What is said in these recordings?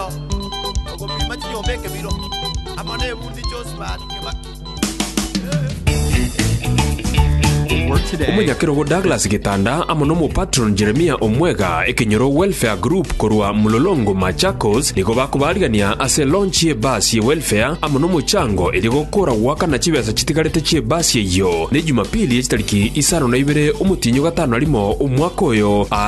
Ao ogopima chinyomba ekebiro, amo nebundi chionsi baare kebake. Omonyakerogo Douglas Gitanda amo n'omopatron Jeremiah Omwega Ekenyoro Welfare Group korwa Mlolongo Machakos nigo bakobarigania ase launch ye bus ye welfare amo nomochango erio gokora goakana chibesa chitigarete chie bus eyio ne Jumapili echitariki isano na ibere omotienyi ogatano na rimo omwaka oyo aa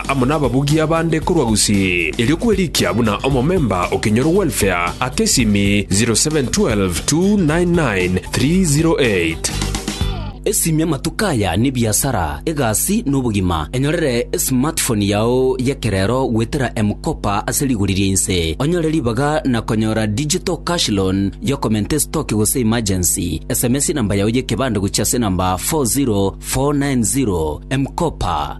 amo nababugia bande korwa gusii, erio kwerikia buna omomemba o Kinyoro Welfare, Akesimi, 0712 299 308. Esimia amatuko aya n'ebiasara, egasi, na obogima. Enyorere esmartphone yao y'ekerero goetera M-Kopa ase rigori ria inse. Onyore ribaga na konyora digital cash loan y'okomenta esitoki gose emergency. Sms namba yao y'ekebande gochia ase namba 40490. M-Kopa.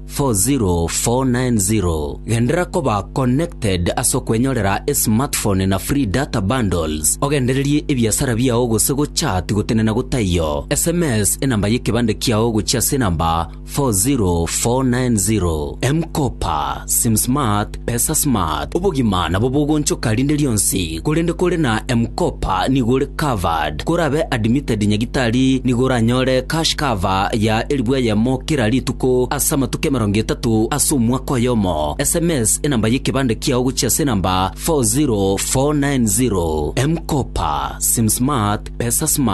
40490 Genderera koba connected ase okwenyorera esmartphone na free data bundles, ogendererie ebiasara biao gose gochat gotenena gotaiyo. Sms enamba y'ekebande kiao gochia ase enamba 40490. M-Kopa, SimSmart, Pesa smart, obogima nabo bogonchoka rinde rionsi, korende kore na M-Kopa nigo ore covered. Korabe admitted nyagitari nigo oranyore cash cover ya elifu eyemo kera rituko ase amatuko emerongo etato ase omwaka oyomo. SMS enamba y'ekebande kiao gochia ase enamba 40490. M-Kopa, Sim Smart, Pesa Smart.